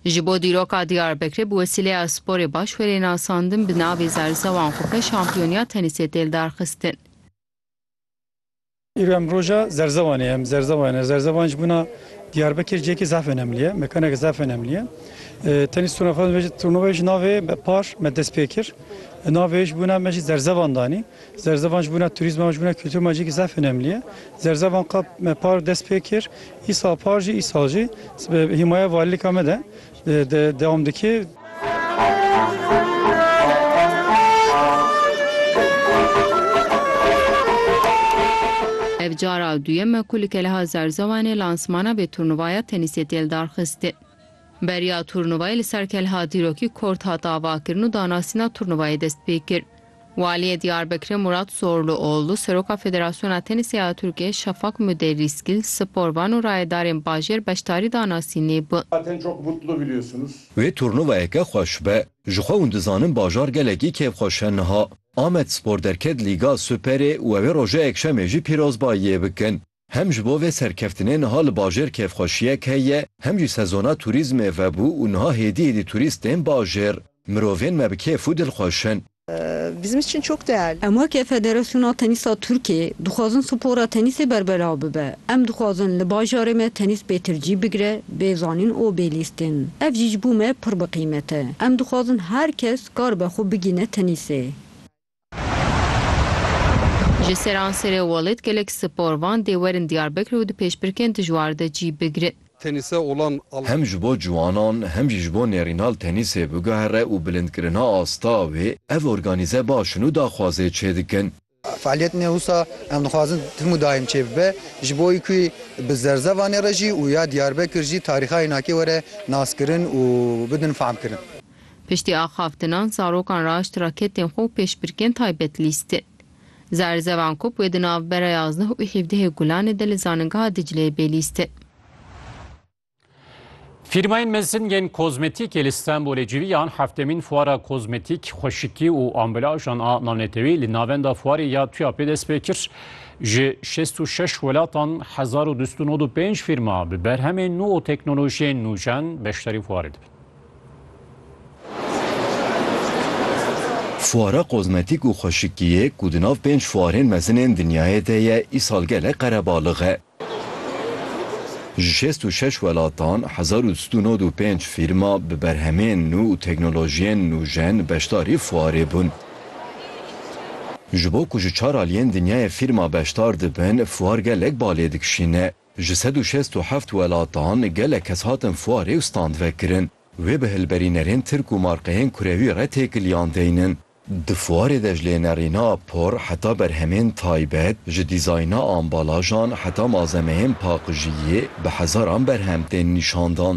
Ji bo dîroka Diyarbekirê bi wesîleya Sporê baş were nasandin bi navê Zerzewan xwe pê şampiyoniya tenîsê tê lidarxistin. Îro em roja Zerzewanê ye. Em Zerzewan ye. Zerzewan ji bona Diyarbekir cihekî zaf enemlî ye. Mekaneke zaf enemlî ye. Tenîs turnuvayê jî navê Par me dest pê kir. Navê ji bona me jî Zerzewan danî. Zerzevan ji bona turîzma û ji bona kultura me cihekî zaf enemlî ye. Zerzevan qat me par dest pê kir, îsal par jî îsal jî bi hîmaya valîlika me de dewam dike. Ev cara duyem e ku li Keleha Zerzewanê lansmana vê turnuvaya tenîsê tê lidarxistin. Beriya turnuvayê li ser Kelha Dîrokî Kort hat avakirin û danasîna turnuvayê dest pê kir. Waliyê Diyarbekirê Murat Zorluoğlu, Seroka Federasyona Tenîsê ya Tirkiyê Şafak Müderrisgil, sporvan û rayedarên bajêr beşdarî danasînê bûn. Zaten çok mutlu biliyorsunuz. Wê turnuvayeke xweş be. Ji xwe hûn dizanin bajar gelekî kêfxweş e niha. Amedspor derket Lîga Superê û ew ê roja Yekşemê jî pîrozbayiyê bikin. Hem ji bo vê serkeftinê niha li bajêr kêfxweşiyek heye, hem jî sezona turîzmê vebû û niha hêdî hêdî turîst tên bajêr. Mirovên me bi kêf û dil xweş in. Bizim için çok değerli. Em weke Federasyona Tenîsa Tirkiyê dixwazin spora tenîsê berbelav bibe. Em dixwazin li bajarê me tenîs pêtir cî bigire, bê zanîn û bê lîstin. Ev jî ji bo me pir bi qîmet e. Em dixwazin her kes karibe xwe bigîne tenîsê. Ji Seranserê Walid gelek sporvan dê werin Diyarbekir û di pêşbirkên dijwar de cî bigrin. Tenîse olan al. Hem ji bo ciwanan hem jî ji bo nêrînal tenîsê biguhere û bilindkirina asta wê ev organîze baş in û daxwazê çêdikin. Fealiyet ne wisa em dixwazin tim û daîm çêbibe ji bo wî ku bi zerzevanê re jî û ya Diyarbekir jî tarîxa Înakê were naskirin û bidin fehmkirin. Piştî axaftinan zarokan raşt raketên xwe û pêşbirkên taybet lîstin. Zerzevan Kup wê di navbera yazdeh û hîvdehê Gulanê de li Zaningeha Dicleyê bê lîstin. Fîrmayên mezin yên kozmetîkê li Stenbolê civiyan heftemîn fuara kozmetîk, xweşikî û ambelajan a navnetewî li Navenda Fuarê ya TUAP'ê dest pê kir. Ji şêst û şeş welatan hezar û du sed û nod û pênc fîrma bi berhemên nû û teknolojiyên nûjen beşdarî fuarê dibin. Fuara kozmetîk û xweşikiyê ku di nav pênc fuarên mezin ên dinyayê de ye îsal gelek qerebalix e. Ji şêst û şeş welatan hezar û sed û nod û pênc fîrma bi berhemên nû û teknolojiyên nûjen beşdarî fuarê bûn. Ji bo ku ji çar aliyên dinyayê fîrma beşdar dibin, fuar gelek balê dikişîne. Ji sed û şêst û heft welatan gelek kes hatin fuarê û stand vekirin. Wê bi hilberînerên tirk û markeyên kurewî re têkiliyan deynin. Di fuarê de ji lênerîna por heta berhemên taybet, ji dîzayna ambalajan heta malzemeyên paqijiyê bi hezaran berhem tên nîşandan.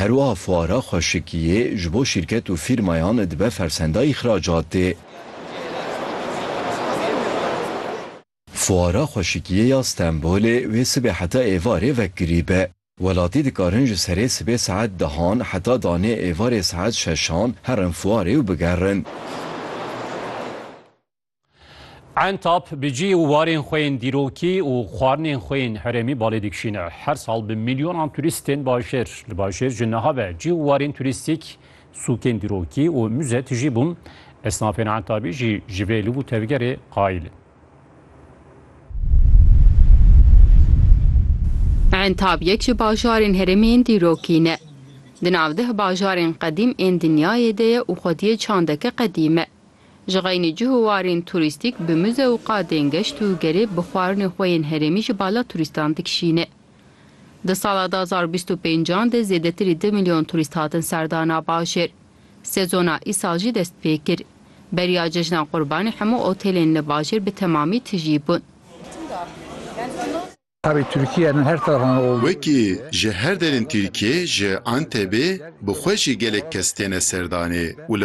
Herwiha fuara xweşikiyê ji bo şîrket û fîrmayan dibe fersenda îxracatê. Fuara xweşikiyê ya Stenbolê wê sibê heta êvarê vekirî be. Welatî dikarin ji serê sibê saet dehan heta danê êvarê saet şeşan herin fuarê û bigerin. Entap bi cî û warên xwe yên dîrokî û xwarinên xwe yên herêmî balê dikişîne. Her sal bi milyonan turîstên bajêr li bajêr ji niha ve cî û warên turîstîk, sûkên dîrokî û muze tijî bûn. Esnafên Entabî jî ji vê liv û tevgerê qayîl in. Entab yek ji bajarên herêmê yên dîrokî ne. Di navdeh bajarên qedîm ên dinyayê de ye û xwediyê çandeke qedîm e. Ji xeynî cih û warên turîstîk bi muze û qadên geşt û gerê bi xwarinê xwe yên herêmî ji bala turîstan dikişîne. Di sala du hezar û bîst û pênc an de zêdetirî du milyon turîst hatin serdana bajêr. Sezona îsal jî dest pê kir. Beriya cejna Qurbanê hemû otelên li bajêr bi temamî tijî bûn. Wekî ji her derên Tirkiyê ji Antebê bi xwe jî gelek kes têne serdanê û li